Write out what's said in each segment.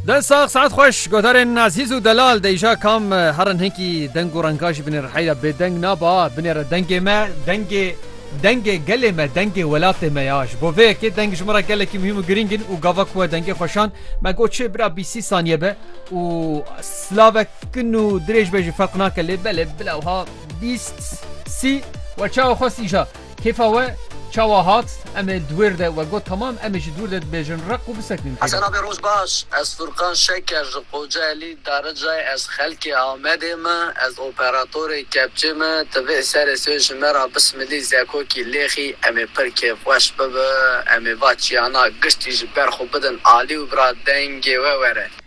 Dest sax saet xweş godarên Azîz û Delal deyja kam herin hinkî deng û renga jî binê riheyra bêdeng naba binê re dengê me dengê dengê gelê me dengê welatê me ya ji bo vê yekê deng ji min re gelekî muhîm û girîng in û gava ku we dengê xweşand me got çê bira bîst sî saniye be û silave kin û dirêj be jî ferq nake lê belê bila wiha bîst sî we çawa xwest îja Kêfa we çawa hat? Em ê di wêr de, we got tamam em ê ji dûr de dibêjin req û bisekinin pê Hesen re. Abê roj baş. Ez Furkan Şeker ji Kocaelî Daricayê ez xelkê Amedê me ez operatorê kepçê me tivê serê sê ji me ra bismilî zekokî lêxî em ê pir kêfxweş bibe em ê va çiyana giştî ji ber xwe bidin alî û bira dengê we were.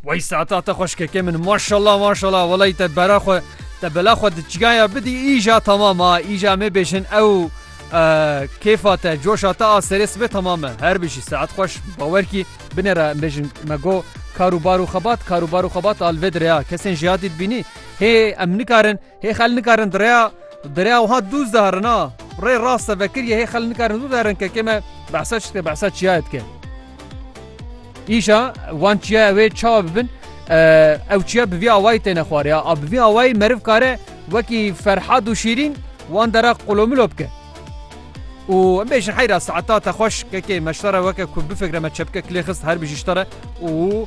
Wey saata te xweşkekê min maşallah maşallah welay te bera xwe te bela xwe di çigaya bidî îja tamam a îja me bêjin ew kêfa te coşa te a serê sibê tamam e her bijî saet xweş bawer kî binê re bêjin me go karû barû xebat karû barû xebat alvê direya kesên jiyadî dibînî hê em nikarin Hê xel nikarin di rêya di rêya wiha dûz de herin a. Rê rast e vekir ye hê xel nikarin dû de herin kekê me behsa çi dike behsa çiyayê dike. Îşa wan çiyaya wê çawa bibin ew çiya bi vî awayî têne xwariya a bi vî awayî meriv kare wekî ferhad û şîrîn wan dera qulomilo bike. û em bêjin heyra saeta te xweş kekê me ji te re weke ku bifikre me çepike kilê xist her bî jî ji te re û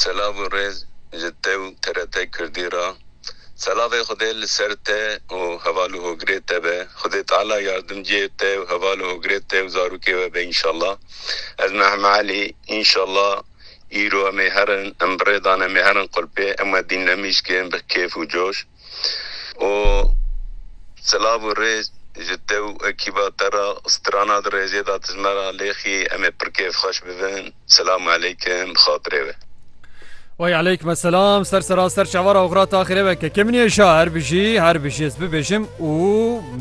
Selav û rêz ji te û TRT Kurdî ra. Selavê Xwedê li ser te û heval û hogirê te be. Xwedê Teala yardimciyê te û heval û hogirê te û zarokê we be înşallah. Ez me Heme Elî. Înşallah îro em ê herin, em bi rê dan em ê herin qulpê. Em we dîn nemîşkin bi kêf û coş. û silav û rê ji te û ekîba te re strana di rêzê de dijme re lêxî em ê pir kêfxweş bibin. Silam eleykim bi xatirê we. Wey eleykme selam ser sera ser çavara oxra taxirê weke kemniyê şa her bijî her bijî ez bibêjim û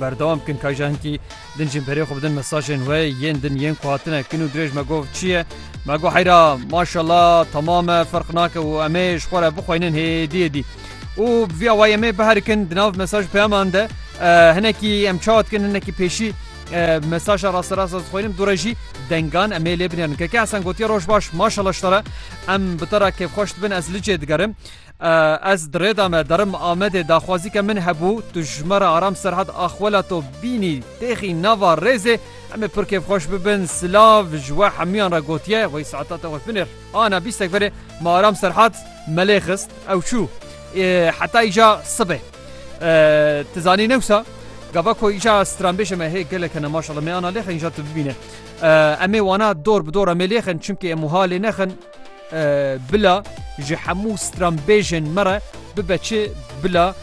berdewam bikin kayja hinkî Din jî berê xwe bidin mesajên we yên din yên ku hatine kin û dirêj me gov çi ye? Me got heyra maşala temam e ferq nake û em ê ji xwe re bixweynin hêdî hêdî. Û bi vî awayî em ê biherikin di nav mesaj peyaman de hinekî em çawa dikin hinekî pêşî mesaja rasterast ez dixweynim dû re jî dengan em ê lê binêrin. Keke Hesen gotiye roj baş maşala ji te re em bi te re kêfxweş dibin ez licê digerim. Ez di rê de me derim Amedê daxwazîke min hebû, tu ji me re Aram Serhad axwela to bînî têxî nava rêzê, em ê pir kêfxweş bibin, silav ji we hemûyan re gotiye, wey saeta te wek binêr. Ana bîstek verê me Aram Serhad melê xist, ew çû. Heta îja sibê. Ti zanî ne wisa, gava ku îja stranbêjê me hê gelek hene maşallah, me ana lêxin îja tu bibîne. Em ê wana dor bi dor em ê lêxin, çimkî em wiha lê nexin, Bila ji hemû stranbêjên me re bibe çi, bila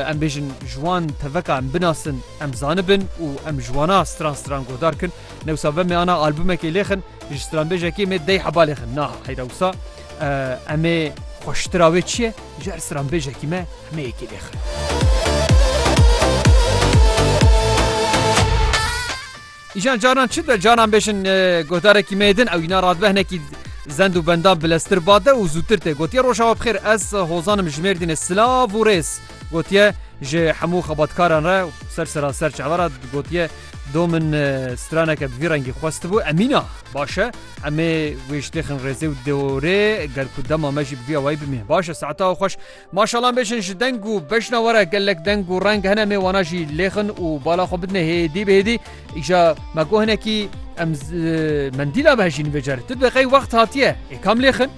em bêjin ji wan teveka em binasin, em zanibin û em ji wana stran stran guhdar kin. Newsa ve me ana albumekê lêxin, ji stranbêjekê me dey heba lêxin. Na heyra wisa em ê xweştira wê çi ye, ji her stranbêjekî me hemê yekê lêxin. Îjan caran çi be caran bêjin guhdarekî me din ew îna radbe hinekî zend û bendan bileztir bade û zûtir tê gotiye rojawa bixêr ez hozanim ji mêrdînê silav û rêz gotiye ji hemû xebatkaran re ser sera ser çavera gotiye do min straneke bi vî rengî xwestibû emîna baş e emê wê ji têxin rêzê û deorê gel ku dema me jî bi vî awayî bimî baş e saeta xweş Maşalan bêjin ji deng û bejna we re gelek deng û reng hene mê wana jî lêxin û bala xwe bidine hêdî bi hêdî îja me got hinekî em mendîla behejîn vê carê tu dibe qey wext hatiye ê kam lêxin.